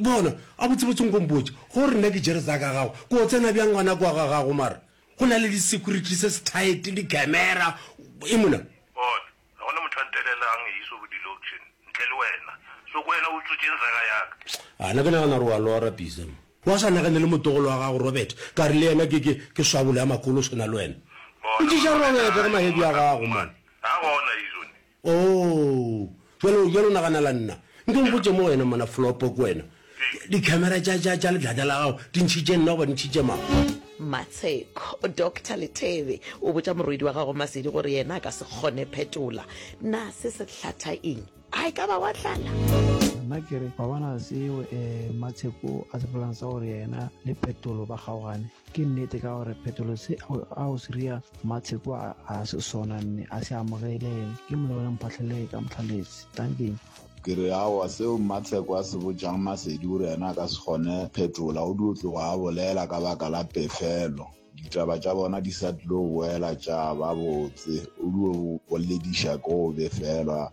Bona, a botsebotse nko mpotše, go re nna ke tšere tsa ka gago, ko o tsena bjang ngwana kwa ga gago mara? Go na le di-security se se tight, di-camera, e mona. Bona, ga go na motho a ntelelang eiso go di-loction ntle le wena, so ko wena o utswetseng tsa ka ya ka? A na ke nagana gore wa lora Pisa mo. Wa sa nagane le motlogolo wa gago Robert, ka re le yena ke, ke, ke swabolo ya makolo o swana le wena. Bona, Botšiša Robert ge mahebi a gago mane. Ga gona eiso ne, Oo, bjalo, bjalo naganela nna. Nke o mpotše mo wena, mona Flopo, ke wena. Dikhamera tša, tša, tša letlata la gago di ntšhitše nna goba di ntšhitše mang? Matsheko, Doctor Lethebe o botša morwedi wa gago Masedi gore yena a ka se kgone phetola. Na se se hlatha eng? A e ka ba wa tlala? Nna ke re, wa bona seo, eh, Matsheko a se bolelang sa gore yena le Phetolo ba kgaogane? Ke nnete ka gore phetolo se a o siria matsheko a a se sona mme a se amogele ke molao ya mphatlhelele ka motlhaletse tankeng. Ke re aowa seo mmatsheko a se botšang masedi o re yena a ka se kgone phetola o dio tlogo a bolela ka baka la pefelo ditaba tša bona di sa tlilo boela tša ba botse o dio bolediša ke go befelwa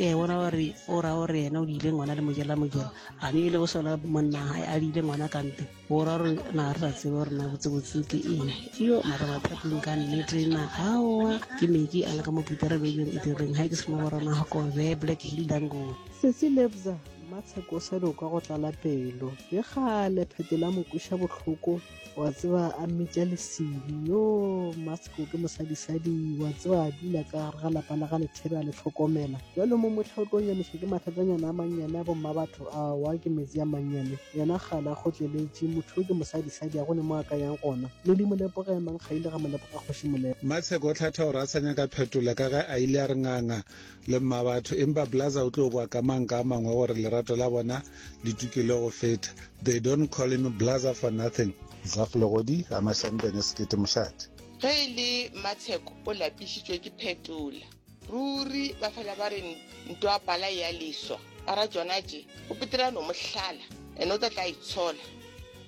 ee bona gore o ra gore yena o diile ngwana le mojela mojela a ne e le go sola monna gae a diile ngwana kante o ra gore na re sa tsebe gore na botsebotse ke eng yo mara mathapong ka nnete na aowa ke meki a le ka mo petere bebeng e direng ga ke sena borona gokobe black hill dango sesi lebza matsheko sa loka go tlala pelo le gale phete la mokweša bohloko wa tseba a mmitša lesedi yo masko ke mosadisadi wa tseba a dula ka gare ga lapa la ga lethebe a le tlhokomela jalo mo motlha o tlo nyamiša ke mathatanyana a mannyane a bomma batho a wa ke metsi a mannyane yena gala a kgotleletše motho o ke mosadisadi a go ne mo a ka yang gona le di molepoga ya mang ga ile ga molepoga kgoši molepo matsheko o tlhatha gore a sa nyaka phetola ka ge a ile a re nganga le mmabatho empa blaza o tlo kwa ka mang ka mangwe gore lerato la bona le tukile go feta they don't call him blaza for nothing zaf legodi a mashambene sekete mošate Ge e le Matsheko o lapišitšwe ke Phetola. Ruri ba fela ba re ntwa pala ya leswa. Ara jona tje, o petela no mohlala, ene o tla tla itshola.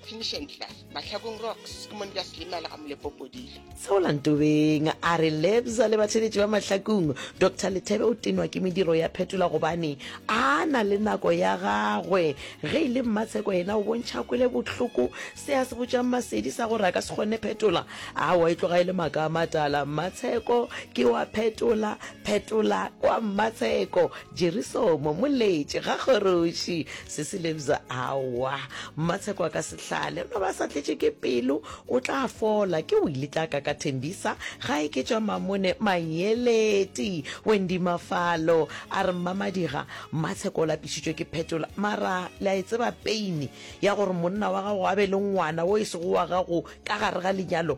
Finishing Class, Mahlakong Rocks, ke mone ka selemela ga molepopodile. seolantobeng a re lebza le batheletši ba mahlakong dr lethebe o tenwa ke mediro ya phetola gobane a na le nako ya gagwe ge e le mmatsheko yena o bontšha kwele bohloko se a se botšang masedi sa gore a ka se kgone phetola a wa e tloga e le maaka a matala mmatsheko ke wa phetola Phetola kwa Mmatsheko, Jerisomo, Moletše, ga Kgoroši, Sesilebza, aowa. Mmatsheko a ka se hlale, no ba sa tletše ke pelo, o tla fola. Ke Willy Tlaka ka Thembisa, gae ke tšwa Mamone, Manyeleti. Wendy Mafalo a re, Mmamadiga, Mmatsheko o lapišitšwe ke Phetola, mara le a e tseba peini ya gore monna wa gago a be le ngwana wo e sego wa gago ka gare ga lenyalo?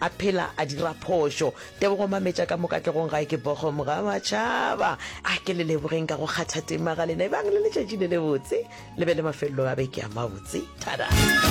A phela a dira phošo. Tebogo mametša ka mo katlegong gae ke Bochum ga matšhaba. A ke le lebogeng ka go kgatha tema ga lena ebang le letšatši le lebotse le be le mafelelo a beke a mabotse. Tada!